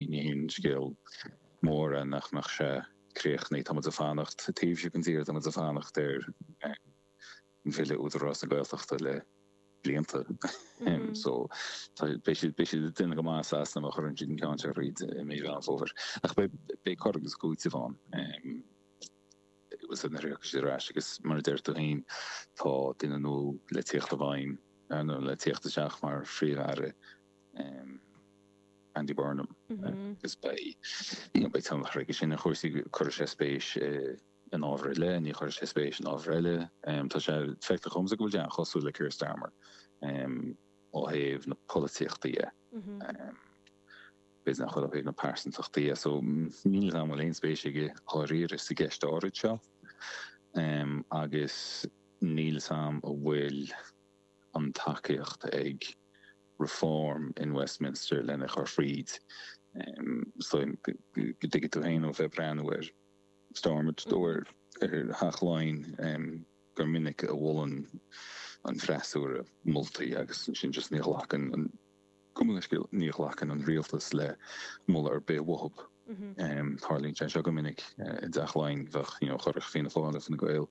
Ní haon scéal mór é nach mbeadh sé críochnaithe. Táimid ag fanacht taobh istigh den tír, táimid ag fanacht ar bhille Údarás na Gaeltachta le blianta. So beidh siad beidh siad ag déanamh go maith i Sasana má chuireann siad an ceann seo thríd i Meán Fómhair. Ach beidh cur agus cúiteamh ann. Nuair a thiocfas siad ar ais agus mar a deir tú féin tá duine nua le tíocht i bhfeidhm nó le tíocht isteach mar phríomh-aire Andy Burnham agus beidh tionchar aige sin ar chúrsaí. Cuirfidh sé spéis in ábhair eile, ní chuirfidh sé spéis in ábhair eile. Tá sé feicthe dhomsa go bhfuil sé an-chosúil le Keir Starmer ó thaobh na polaitíochta dhe. B'fhéidir nach bhfuil ó thaobh na pearsantachta dhe. So níl a fhios agam an bhfuil aon spéis aige dháiríre sa gceist áirid seo agus níl a fhios agam an bhfuil an tacaíocht ag Reform in Westminster lena chur fríd. So tuigfidh tú féin ó bheith ag breathnú ar Stormont nó ar Theach Laighean gur minic a mholann an freasúra moltaí agus ansin just ní ghlacann an, cuma cén scéal, ní ghlacann an rialtas le moladh ar bith uathub. Tarlaíonn sé seo go minic i dTeach Laighean, bheadh, you know, chuirfeadh Fianna Fáil agus Fine Gael,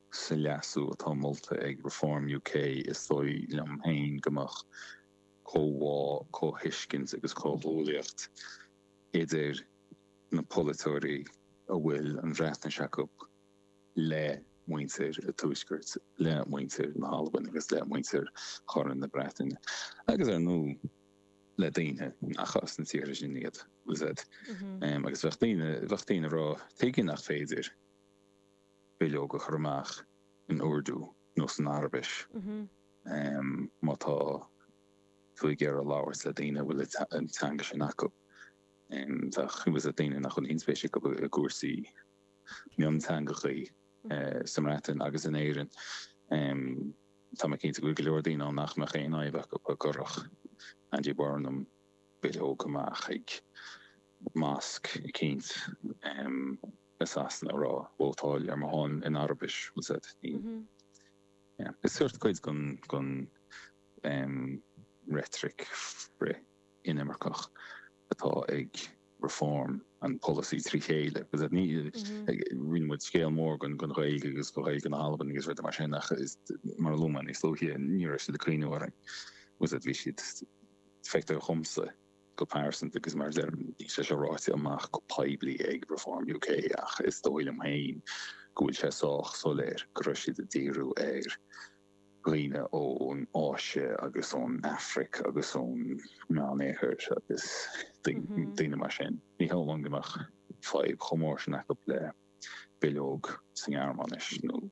Sa leasú atá molta ag Reform UK, is dóigh liom féin go mbeadh comhbhá, comhthuiscint agus comhghuaillíocht idir na polaiteoirí a bhfuil an Bhreatnais acu le muintir an Tuaiscirt, le muintir na hAlban agus le muintir Chorn na Breataine, agus ar ndóigh le daoine nach as na tíortha sin iad, agus bheadh daoine ag rá, tuige nach féidir? bileog a chur amach in Urdu nó san Araibis má tá tú ag iarraidh labhairt le daoine a bhfuil an teanga sin acu. Bheadh, tá a fhios agat, daoine nach bhfuil aon spéis acu i gcúrsaí mionteangachaí sa mBreatain agus in Éirinn. Tá mé cinnte go bhfuil go leor daoine ann nach mbeadh aon fhadhb acub dá gcuirfeadh Andy Burnham bileog amach ag mosque eicínt. i Sasana ag rá vótáil ar mo shon in Araibis, tá a fhios agat. Is seort cuid den reitric frith-inimirceach atá ag Reform an polasaí trí chéile. Rinne muid scéal mór den Ghaeilge agus de Ghaeilge na hAlban agus rudaí mar sin ach, mar a luaigh mé níos luaithe, ní raibh siad ag cuimhneamh orainn, tá a fhios agat. Bhí siad, feictear dhomsa. go pearsanta agus mar a deirim níl sé sin ráite amach go poiblí ag Reform UK ach is dóigh liom féin go bhfuil sé sách soiléir go raibh siad ag díriú ar dhaoine ón Áise agus ón Afraic agus ón Meánoirthear agus daoine mar sin. Ní cheapaim go mbeadh fadhb chomh mór sin acu le bileog sa nGearmáinis nó.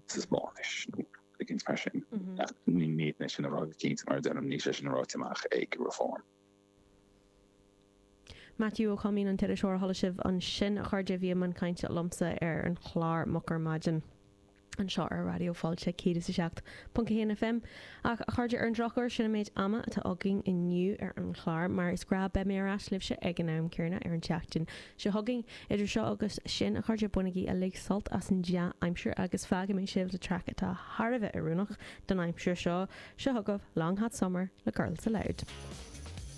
sa Spáinnis nó a dhath mar sin. Ní féidir liom é sin a rá go cinnte mar a deirim, níl sé sin ráite amach ag Reform. Maitiú Ó Coimín an t-iriseoir a chuala sibh ansin, a chairde, a bhí i mbun cainte liomsa ar an chlár Moch ar Maidin anseo ar Raidió Fáilte 107.1 FM. Ach, a chairde, ar an drochuair, sin an méid ama atá againn inniu ar an chlár, mar is gnáth beidh mé ar ais libhse ag an am céanna ar an tseachtain Seo chugainn, idir seo agus sin, a chairde, bainigí uilig sult as an dea-aimsir agus fágfaidh mé sibh le traic atá thar a bheith oiriúnach don aimsir seo, seo chugaibh Long Hot Summer le Girls Aloud.